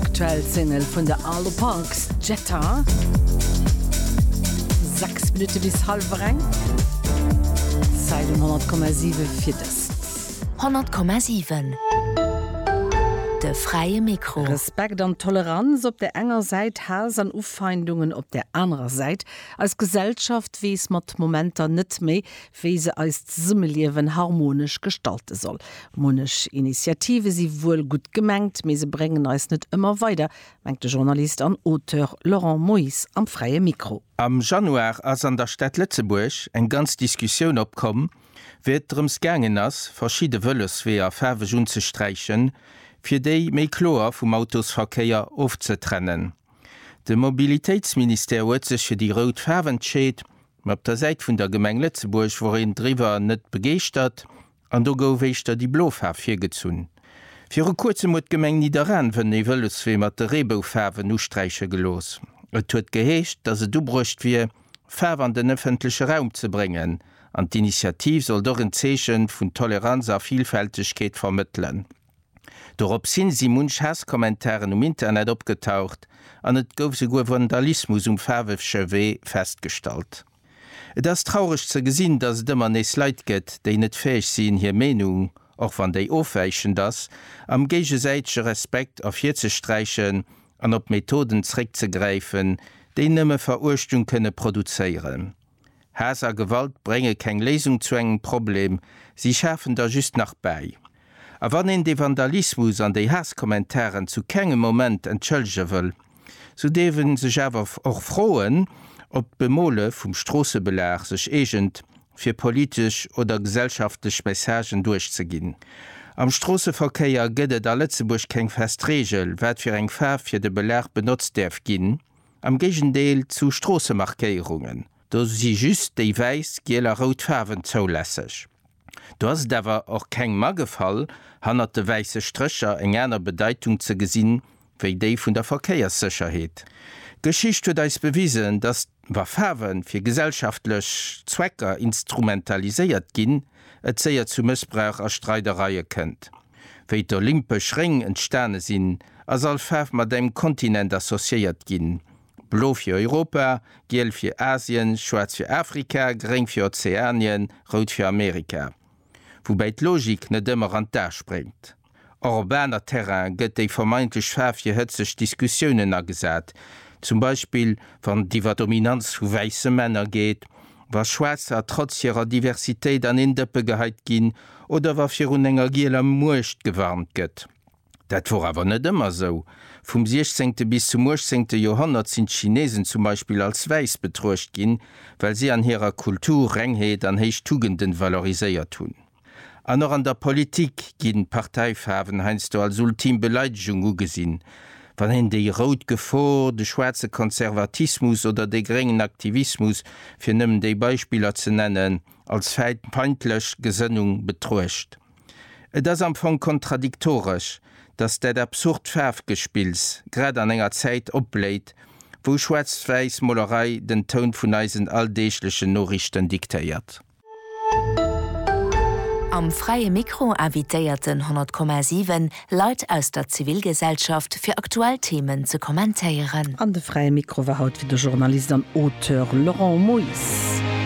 Aktuell Single vun de Arlo Parks, Jetta. 6 Minutte bis hallwer eng. Zäit um 100,7 fir dëst. 100,7 De fräie Mikro. Respekt an Toleranz op der enger Säit, Haass an Ufeindungen op der anerer Säit. Eis Gesellschaft weess mat Momenter net méi, wéi se eist Zesummeliewen harmonesch gestalte soll. Munnech Initiative si wuel gutt gemengt, mee se bréngen eis net ëmmer weider, mengt de Journalist an Auteur Laurent Moyse am Fräie Mikro. Am Januar ass an der Stad Lëtzebuerg eng ganz Diskussioun opkomm, wéi et drëms gaangen ass, verschidde Vëlosweeër faarweg unzesträichen, fir déi méi kloer vum Autosverkéier ofzetrennen. De Mobilitéitsministère huet sech fir déi rout Faarf entscheet, Mä op der Säit vun der Gemeng Lëtzebuerg wor een driwwer net begeeschtert an do gouf éischter déi blo Faarf virgezunn. Viru kuerzem huet d'Gemeng Nidderaanwen ee Vëloswee mat de Reeboufaarwen usträiche gelooss. Et huet geheescht, dass et ubruecht wier, Faarf an den ëffentleche Raum ze bréngen an d'Initiativ sollt och en Zeechen vun Toleranz a Vilfältegkeet vermëttelen. Doropshin si munch Haasskommentaren um Internet opgetaucht an et gouf souguer Vandalismus um Faarwefche Wee festgestallt. Et ass traureg ze gesinn, dass et ëmmer nees Leit gëtt, déi net fäeg sinn hir Meenung, och wann déi ofwäichend ass, am géigesäitege Respekt ervirzesträichen an op Methoden zréckzegräifen, déi nëmme Veruechtung kënne produzéieren. Haass a Gewalt brénge keng Léisung zu engem Problem, si schafen der just nach bäi. A wann een dee Vandalismus an déi Haasskommentaren zu kengem Moment entschëllege wëll, sou dierf ee sech awer och froen, ob d'Bemole vum Stroossebelag sech eegent, fir politesch oder gesellschaftlech Messagen duerchzeginn. Am Stroosseverkéier gëtt et a Lëtzebuerg keng fest Reegel, wat fir eng Faarf fir de Belag benotzt däerf ginn, am Géigendeel zu Stroossemarkéierungen. Do si just déi wäiss, giel a rout Faarwen zoulässeg. Do ass et awer och kengem agefall, hannert de wäisse Strécher eng aner Bedeitung ze gesinn, wéi déi vun der Verkéierssécherheet. D'Geschicht huet eis bewisen, datt, wa Faarwe fir gesellschaftlech Zwecker instrumentaliséiert ginn, et séier zu Mëssbrauch a Streidereie kënnt. Wéi d'olympesch Réng entstane sinn, ass all Faarf mat engem Kontinent associéiert ginn, Blo fir Europa, giel fir Asien, schwaarz fir Afrika, gréng fir Ozeanien, rout fir Amerika. Woubäi d'Logik net ëmmer an d'A spréngt. Och op aner Terraine gëtt déi vermeintlech Faarf fir hëtzeg Diskussiounen agesat, zum Beispill wann et iwwer d'Dominanz vu wäisse Männer geet, wa Schwaarzer trotz hirer Diversitéit an een Dëppe geheit ginn oder wa virun enger gieler Muecht gewarnt gëtt. Dat wor awer net ëmmer sou. Vum 16. bis zum 18. Joerhonnert sinn d'Chinesen zum Beispill als wäiss betruecht ginn, well si an hirer Kultur Rengheet an héich Tugenden valoriséiert hunn. An och an der Politik ginn Parteifaarwen heiansdo als ultim Beleidegung ugesinn, wann een déi rout Gefor, de schwaarze Konservatismus oder de gréngen Aktivismus, fir nëmmen déi Beispiller ze nennen, als feindlech Gesënnung betruecht. Et ass am Fong kontradiktoresch, datt dat absurd Faarfgespills grad an enger Zäit opbléit, wou schwaarzt-wäiss Molerei den Toun vun eisen alldeeglechen Noriichten diktéiert. Am Fräie Mikro invitéierten 100,7 Leit aus der Zivilgesellschaft fir aktuell Themen ze kommentéieren. An de Fräie Mikro war haut fir de Journalist an Auteur Laurent Moyse.